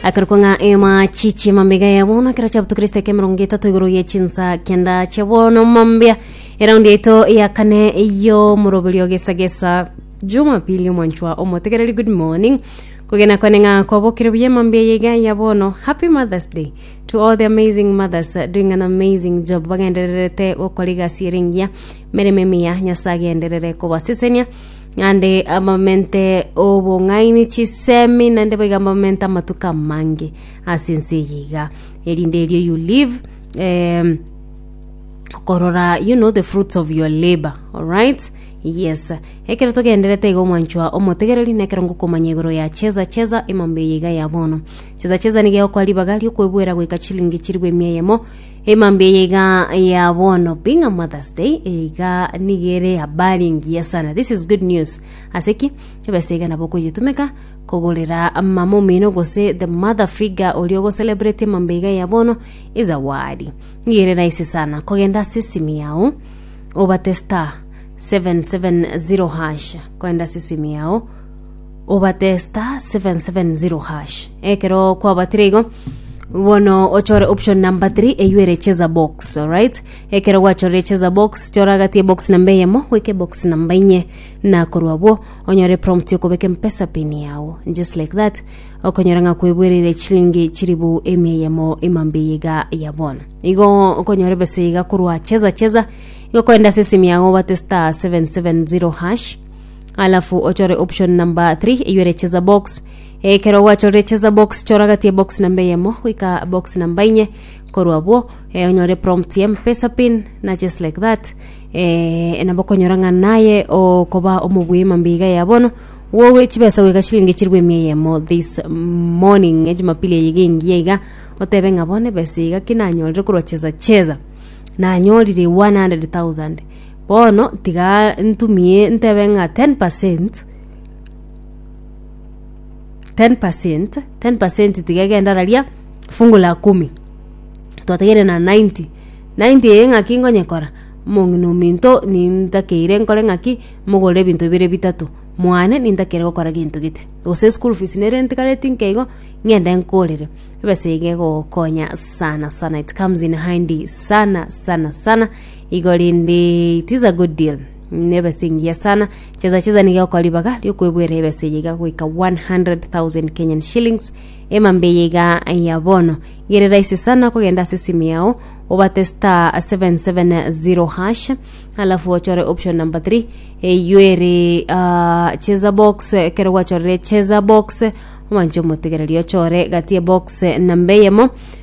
akarikwa ng'a ema chichi mambega ya bono ekero chiabutu kristo eke mirongo etato igoro ye chinsa kenda chia bono mambia eraundi yaito ya kane yo moroberio gesa gesa jumapili omwanchwa omotegereri good morning kogena kwane ng'a kwabokire buya mambia yega ya bono happy mothers day to all the amazing mothers uh, doing an amazing job bagendererete gokora egasi erengiya mereme emiya nyasaye agenderere kobasesenia Naende amamente 'obong'aini chisemi, naende boigo amamente 'amatuko amange ase ense eye iga, erinde erio you live em, korora you know the fruits of your labour alright yes ekero togendererete igo mwanchwa omotegereri na ekero ngokomanya igoro ya cheza cheza emambe eye iga ya bono cheza cheza nigo egokora ribaga ri'okwebwera goika chilingi chirigwe emia eyemo. Emambia eye iga ya bono, being a mother's day, eye iga niga ere habari engiya sana, this is good news. Ase ki? Ebesa iga nabo okoyetumeka kogorera mama omino gose the mother figure oria ogocelebrate emambia iga ya bono ezawadi. Niga ere rahisi sana kogenda ase esimi yao obate star 770 hash kogenda ase esimi yao obate *770#. Ekero kwabatire igo, bono ochore option number 3 eywo ere cheza box, alright? Ekero gwachorire cheza box, chora agati ebox namba eyemo goika ebox namba inye, na korwa abwo onyore prompt yokobeka empesa pin yago. Just like that, okonyora ng'a kwebwereire chilingi chiribu emia eyemo ime mbiya iga ya bono. Igo okonyora ebesa iga korwa cheza cheza, igo okogenda ase esimi yago obate *770#. alafu ochore option number 3 eywere cheza box ekero gwachorire cheza box chora gati ya box namba eyemo goika box namba inye korwa abwo eh, onyore prompt ya mpesa pin na just like that eh, nabo konyora ng'a naye okoba omobui mambiga ya bono wowe chibesa goika chiringi chirwe emia eyemo this morning ya jumapili eye gengiya iga otebe ng'a bono ebesa iga kinanyorire korwa cheza cheza nanyorire 100000 Bono tiga ntumie ntebe ng'a ten percent, ten percent, ten percent tiga egende araria fungu la kumi. Twategeire na ninety, ninety eye ng'aki ngonyekora, omong'ina ominto nintakeire nkore ng'aki, mogorere ebinto bibere bitato, mwane nintakeire gokora gento gete. Gose school fees nere ntigare tinke igo, ng'ende nkorere. Ebesa iga egogokonya sana sana it comes in handy sana sana sana. Igori ndi it is a good deal nebe singiya sana cheza cheza niga okwa ribaga riokwebwera ebesa eye iga goika 100,000 Kenyan shillings emambe eye iga ya bono gere rahisi sana kogenda ase simu yao obate star 770 hash alafu ochore option number 3 eyo ere ah, cheza box ekero gwachorire cheza box omanche omotegereri ochore gati ebox namba eyemo